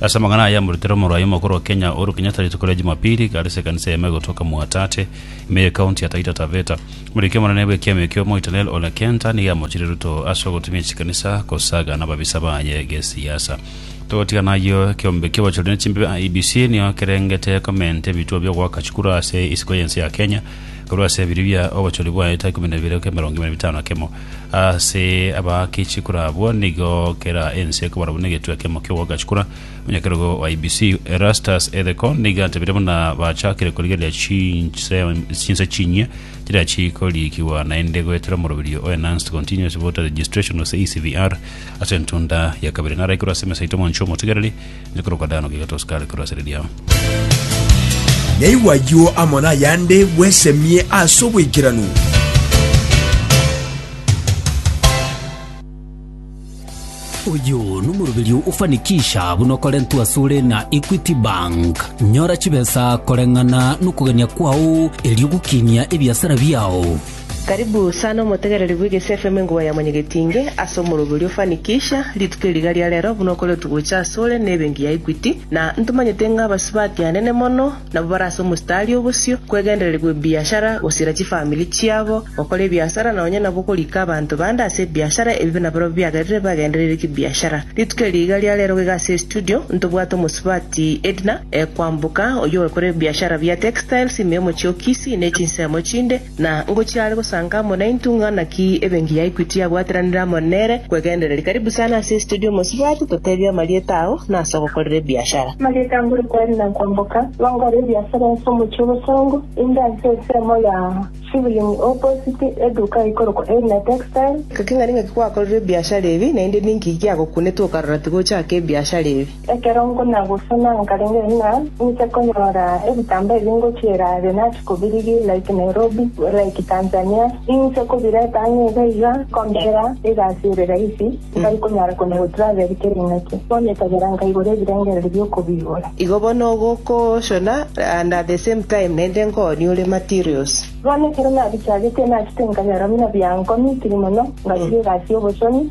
Ase amang'ana aya amoretire omorwaria omokoro o Kenya, Uhuru Kenyatta rituko ria Jumapili igare ase ekanisa y'Emego gotoka Mwatate, ime y'ekaunti ya Taita Taveta. Omorekia omonene bw'ekiama ekio Omoito Nell Ole Kenta nigo amochirie Ruto ase ogotumia chikanisa gosaga nababisa baye gesiasa. Togotigana ayio, ekeombe ki'obochori ne chimbebe IEBC nigo kerengete komenta ebituo bi'ogoaka chikura ase isiko y'ense ya Kenya korwa ase ebiria bia obochori bwa eta ikomi na bibere goika emerongo ime na bitano na kemo. Ase abaake chikura abwo nigo kera ense ekobara buna egetwe kemo ki'ogoaka chikura. Omonyakerogo o IEBC, Erastus Ethekon, nigo atebire buna bachakire korigereria chinse chinse chinyia chiria chikorikigwa naende goetera omoroberio o Enhanced Continuous Voter Registration gose ECVR ase entunda ya kabere. Naraikure ase emesa yaito omonche omotigereri Nikorokwa Dano gaiga tosukare korwa asare riao. Naigwe ayio amo nayande bwesemie ase oboikeranu. Uyu nomoroberi ofanikisha buna okorentwa sore na Equity Bank. Nyora chibesa koreng'ana nokogania kwao erio gokinia ebiasara biao. Karibu sana omotegereri bw'Egesi FM engogwa ya Mwanyagetinge ase omoroberio ofanikisha rituko eri riga ria rero buna okoretwe gocha asore n'ebenki ya Equity na ntomanyete ng'a abasibwa akeanene mono nabo bare ase omostari obosio kwegendereri gw'ebiashara gosiira chifamiri chiabo gokora ebiasara na onye nabo korika abanto bande ase ebiashara ebibe nabarabwo biagerire bagendereire kibiashara rituko eri iga ria rero gega ase estudio ntobwate omosubati Edna Kwamboka oyio ogokora ebiashara bia textiles imemo chiokisi ne chinsemo chinde Na ngochia are gosanka amo naintwe, ng'ana ki ebenki ya Equity yabwateranire amo nere kwegendereria. Karibu sana ase estudio mosibwati totebie amarieta ao na ase ogokorera ebiashara. Amarieta mbore kweri na kwamboka nonkore ebiasara ase omochie o Bosongo inde ase ensemo ya Shivling opposite eduka eikorokwa Eirina Textile. Ngaki ng'ani ng'aki kwakorire ebiashara ebi naende ninki giagokunete okarora tigochaka ebiashara ebi? Ekero nkonagosoma nkarenge ng'a ninche konyora ebitambaa ebi ngochiera the nachi kobirigia like Nairobi like Tanzania ninche kobireta ang'e iga iga nkombera egasi ere rahisi ntari konyara konya go travel kera ing'aki bono etabera nkaigora ebirengererio bi'okobigora. Igo bono ogokoshona and at the same time naende nkoonia ore materials. Bono ekero nabichagetie nachete nkanyora buna biankomitiri mono ngachiria egasi y'obochoni.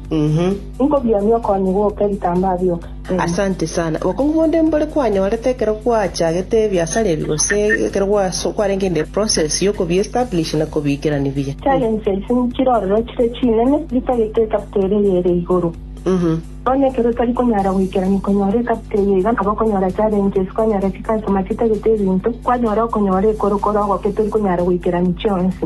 Inkobionia okonye gwoka ebitambaa bioka, Ena. Asante sana. Obokongu bonde mbore kwanyorete ekero gwachagete ebiasara ebi gose ekero gwaso kwarenge in the process yo kobi establish na kobiikerani buya? Challenges nchire ororo chire chinene ritagete ecapital eye ere igoro. Bono ekero otari konyara goikerania konyora ecapital eye iga nabo okonyora challenges, kwanyora chicustomer chitagete ebinto, kwanyora okonyora ekorokoro ogoke tori konyara goikerani chionsi.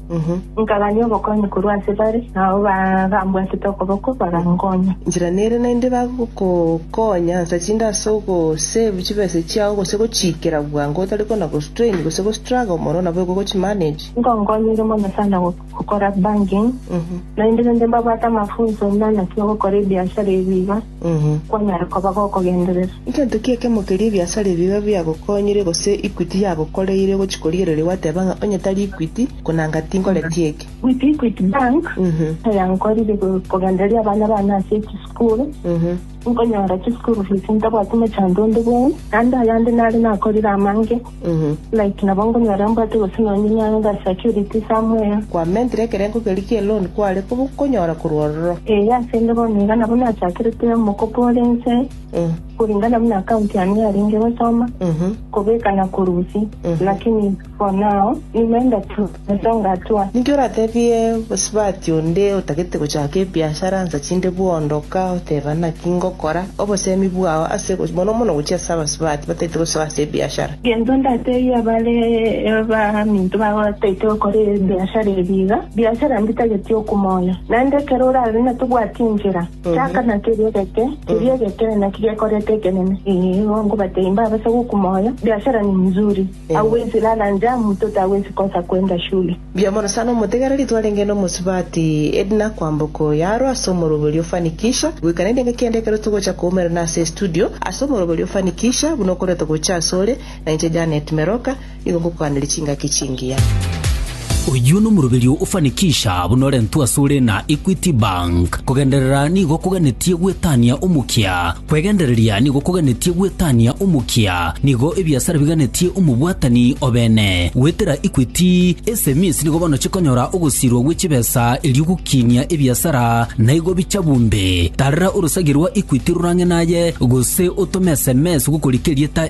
Nkagania obokonyi korwa ase bare, na abwo bambwatete okoboko bagankonya. Inchera nere naende bagokokonya, ansa chinde ase ogosave chibesa chiao gose gochiikera bwango otari kona-gostrain gose gostruggle mono nabo igo ogochimanage. Nkonkonyeire mono sana gokora banking, naende naende mbabwate amafunso buna naki ogokora ebiashara ebi iga. kwanyare koba gokogenderera. Ngento ki ekemo keria ebiasara ebio bibe biagokonyire gose equity yagokoreire gochia korigereria gwateba ng'a onye tari equity, konanga tinkoreti eke? With Equity Bank, aya nkorire kogendereria abana bane ase echisukuru, nkonyora chisukuru fees ntabwati mochango onde bwenene, naende ayande nare nakorire amange. Like nabo nkonyora mbwate gose nonye nyang'e ga security some where. Kwamentire ekerengo keria gie loan kware koba konyora korwa ororo. Ee, ase inde bono iga nabo nachakerete omokopo ore inse, koringana buna account yane yarenge gosoma, kobeka na korusia. Lakini for now, nimeenda tu. Inche ngatwa. Ninki oratebie bosibati onde otagete gochaka ebiashara nsa chinde bwondoka oteba naki ngokora? Obosemi bwao ase mono mono gochia ase abasibati batagete gosoa ase ebiashara. Gento ndatebia bare baminto babo bataete gokora ebiashara ebi iga, biashara mbitageti okumoyo. Naende ekero orabe na tobwati enchera, chaka na keria geke, keria egekeene naki gekorete ekenene. Ee, igo nkobatebia mbabase gokumoyo, biashara ni mzuri. Agwo inse nana nja, moto tagwesi kosa kwenda shule. Mbuya mono sana omotegereri twarenge n'omosubati Edna kwamboka oyo aro ase omorobori o Fanikisha goika naende engaki ende ekero togocha koumerana ase estudio ase omorobori o Fanikisha buna okorete gocha asore, na inche Janet Meroka nigo ngokoganeria chingaki chingiya. Oyio nomoroberio ofanikisha buna orentwe asore na Equity Bank. Kogenderera nigo koganetie gwetania omokia. Kwegendereria nigo koganetie gwetania omokia. Nigo ebiasara biganetie omobwatani obene. Goetera Equity, SMEs nigo bono chikonyora ogosirwa gwe chibesa erio gokinia ebiasara naigo bicha bumbe. Tarera orosagi rwa Equity rorang'e naye gose otome sms gokorikia erieta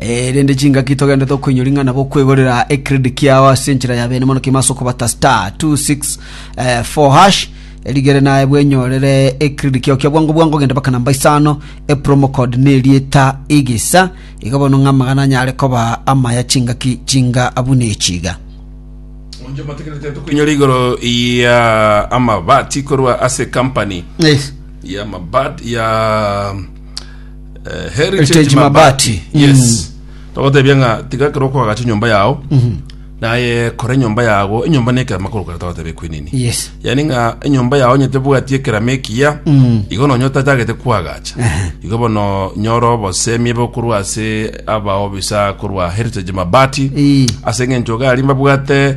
Erinde chingaki togende tokoinywa ring'ana bokwegorera ecredit kiao ase enchera ya bene mono kima ase okobata star 264 hash erigere naye bwenyorere ecredit kiao kia bwango bwango genda baka namba isano epromo code nerieta igisa iga bono ng'a amagana anyare koba amaya chingaki chinga abuna echiga Onje matekerete tokoinyora igoro ya amabati korwa ase company yes ya mabat ya Eh, heritage Heritage mabati Mabati. yes togotebia ng'a tiga kero kwagacha enyomba yao naye kora enyomba yago enyomba nekera makoro kare togotebia kwenini yes yani ng'a enyomba yao nyete bwati ekerama ekiya igo nonye otachagete kwagacha igo bono nyora obosemi ebe okorwa ase abaobisa korwa heritage mabati Ii. ase eng'encho gari mbabwate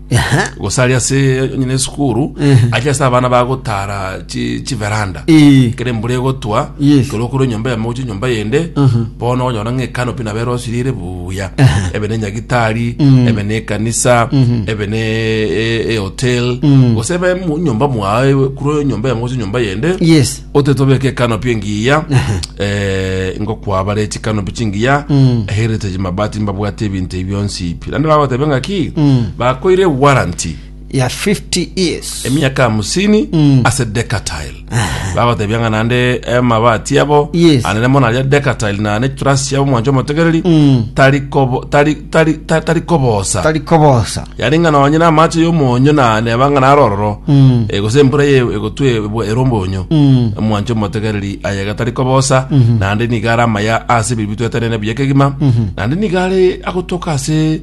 Ehe. gose ari ase nyine esukuru Ehe. ache ase abana bagotara chi- chiveranda Eh. kere embura egotwa Yes. kero okore enyomba yamo gocha enyomba yende Mhm. bono onyora ng'a ekanopi nabo erosirire buya Ehe. ebe ne nyagitari Mm. ebe ne ekanisa Mhm. ebe ne e- e- ehotel Mm. gose ebe mu- nyomba mwaye kure enyomba yamo gocha enyomba yende Yes. otetobeka ekano pia engiya eh, ngokwabara echikano pi chingiya heritage mabati mbabwate ebinto ebi bionsi pi naende bagotebe ng'aki bakoire warranty ya 50 years emiaka hamsini ase decatile bagotebia ng'a naende amabati abo Yes. anene mono aria decatile nane trust yabo mwancho omotegereri tari kobo- tari tari ta- tari kobosa tari kobosa yaani ng'a nonye na amache y'omonyo na neba ng'a naro ororo Mm. eh, gose embura ye egotwe ebwa- ere ombonyo Mm. omwanche omotegereri aye gatari kobosa naende niga are amaya ase ebibi bitwetenene buya kegima naende niga are agotoka ase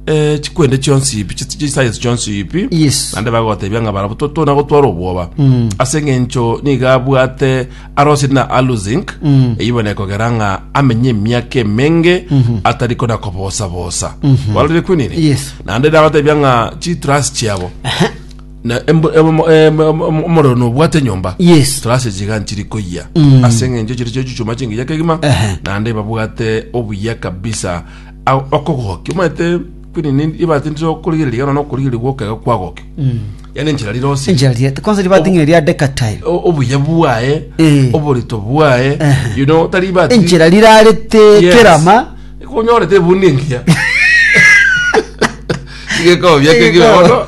eh, chikwende chionsi ipi chi- chiscience chionsi ipi Yes. naende bagotebia ng'a barabo to- tona gotwara obwoba ase eng'encho niga abwate Arosi na Aluzink eywo nekogera ng'a amenye emiaka emenge atari kona kobosa-bosa. Warorire kwini ni? Yes. Naende nabatebia ng'a chitrasi chiabo na embo- emo- em- em- em- omorero nobwate nyomba Yes. trasi chiga nchiri koyia ase eng'encho chiri chio chichuma chingiya kegima Ehe. naende babwate obuya kabisa Au- okogokia omanyete Kwini ni- nibatindire okorigereria ekero nonya okorigereria gw'okegego kwagoke. Yaani enchera rirosie. enchera riete kwanza ribating'e ria decatile O- obuya bwaye Eh. oborito bwaye Ehe. you know tari bati enchera rirarete Yes. kerama konyorete ebundi engiya igekobia Igekobia. kegiaono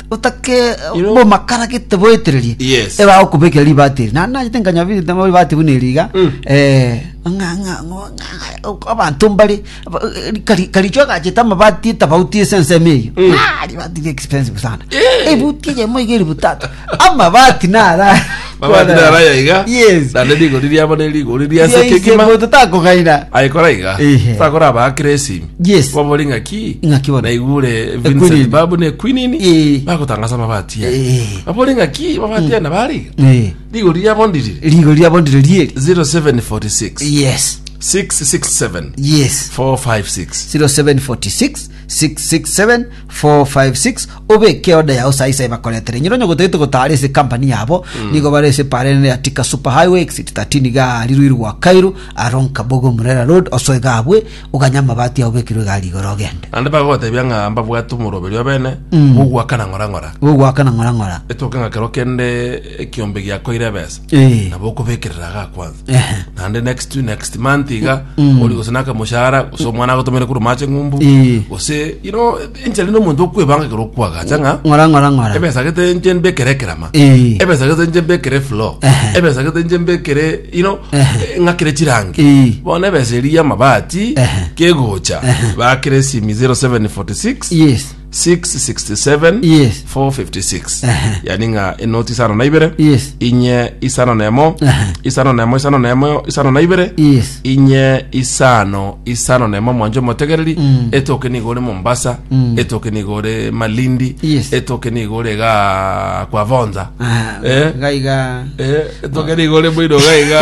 otake You know- bomakara gete boetererie Yes. ebagokobekera ribati eri nani nagete nkanyabirite mo ribati buna eriga Mm. eh, ng'a- ng'a- ng'a- ng'a- abanto mbare aba- eh, kari- karicho agachete amabati etabauti ase ensemo eyo Mm. Ah, ribati ri expensive sana Eh. ebuti eyemo iga eribu tata amabati nara Babati Kwana. naraya iga. Yes. Naende rigori riabo ne rigori ria Ase ase kegima. kegima. Totakogaina. Aikora iga. Ehe. Sakora abakira esimi. Yes. Babori ngaki. Ng'aki bono. Naigure Ekwinini. Vincent babu ne Quinini. Eh. Bagotangasa mabati ya. Eh. Babori ngaki mabati ya nabari. Eh. Rigori riabo ndirire. Rigo riabo ndire rieri. 0746 Yes. 667 Yes. 456 0746 667 456 obeke order yao sai sai bakoretere nyiro onye gotagete gotara ase company yabo nigo bare ase parene ya tika super highway exit 13 gari ruiru gwa kairu aronka bogo murera road osoe gabwe oganya amabati yao bekirwe gari igoro ogende ande bagotebia ng'a mbabwate omoroberio obene bogwakana ng'ora ng'ora bogwakana ng'ora ng'ora etoke ng'a kero kende ekiombe giakoire ebesa Eh. nabo okobekerera aga kwanza Ehe. naende next to next month iga ori gose naka moshahara gose omwana agotomere kuru mache ng'umbu Eh. gose you know enchari nomonto okwebanga ekero okwagacha ng'a ng'ora ng'ora ng'ora ebesa gete nche mbekere ekerama Eh. ebesa gete nche mbekere flow Ehe. ebesa gete nche mbekere you know Ehe. ng'akire chirangi Eh. bono ebesa eri y'amabati Ehe. kegocha bakire esimi 0746 yes 667 Yes. 456 Ehe. yani ng'a enoti isano na ibere Yes. inye isano na emo Ehe. isano na emo isano na emo isano na ibere Yes. inye isano isano na emo mwanjo motegereri Mm. etoke nigo ore mombasa Mm. etoke nigo ore malindi Yes. etoke nigo ore ga kwa vonza Ah, Eh? gaiga Eh, tokere igoro rimo iroga iga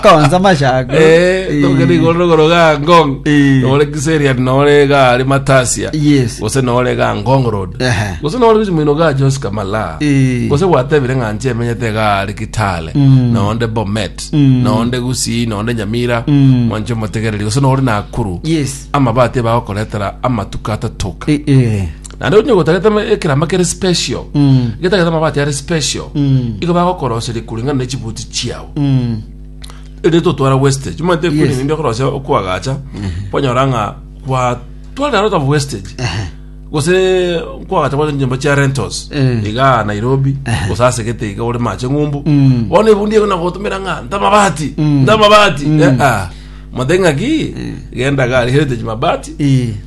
Konza mashako. Eh, Eh, tokere igoro rogoro ga ngong Eh. nore kiserian nore ga ari matasia Yes. gose nore ga ngong road Ehe. gose nore gochi moino ga jos kamala Eh. gose gwatebire ng'a nche emenyete ga ari kitale Mm. nonde bomet Mm. nonde gusii nonde nyamira Mm. mwanche omotegereri gose nore nakuru Yes. amabati bagokoretera amatuko atatoka Eh, eh. naende onye gotagete ama- ekeramba kere special Mm. getagete amabati are special Mm. igo bagokoroseria kulingana ne chibuti chiao Mm. ere totwara wastage omanyete Yes. kwini ninde okorosia okwagacha kwanyora ng'a kwatwara out of wastage Ehe. gose nkwagacha gose nyomba chia rentals Eh. iga nairobi gose asegete iga ore mache ng'umbu Mm. bono ebundi ego nagotumera ng'a ntamabati ntamabati Eh, ah. mate ng'aki genda gari heritage mabati Eh.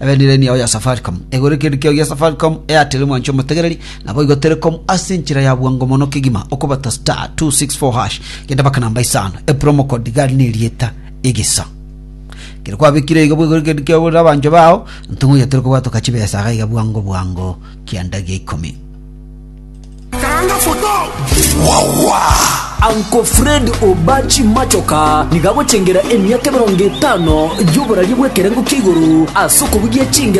Ebenireni yao ya Safaricom. Egora ekerendi kiao gia Safaricom Airtel mwanche omotegereri, naboigo Telecom ase enchera ya bwango mono kegima okobata star 264#. Genda baka namba isano. Epromo code gari nerieta egesa. Kere kwabekire igo bwegore ekerendi kiao borere abancho bao, ntong'o yatere kobwatoka chibesa iga bwango bwango kianda gia ikomi. Uncle Fred Obachi Machoka nigo agochengera emiaka emerongo etano y'oboraria bw'ekerengo kia igoro ase okobugia chingero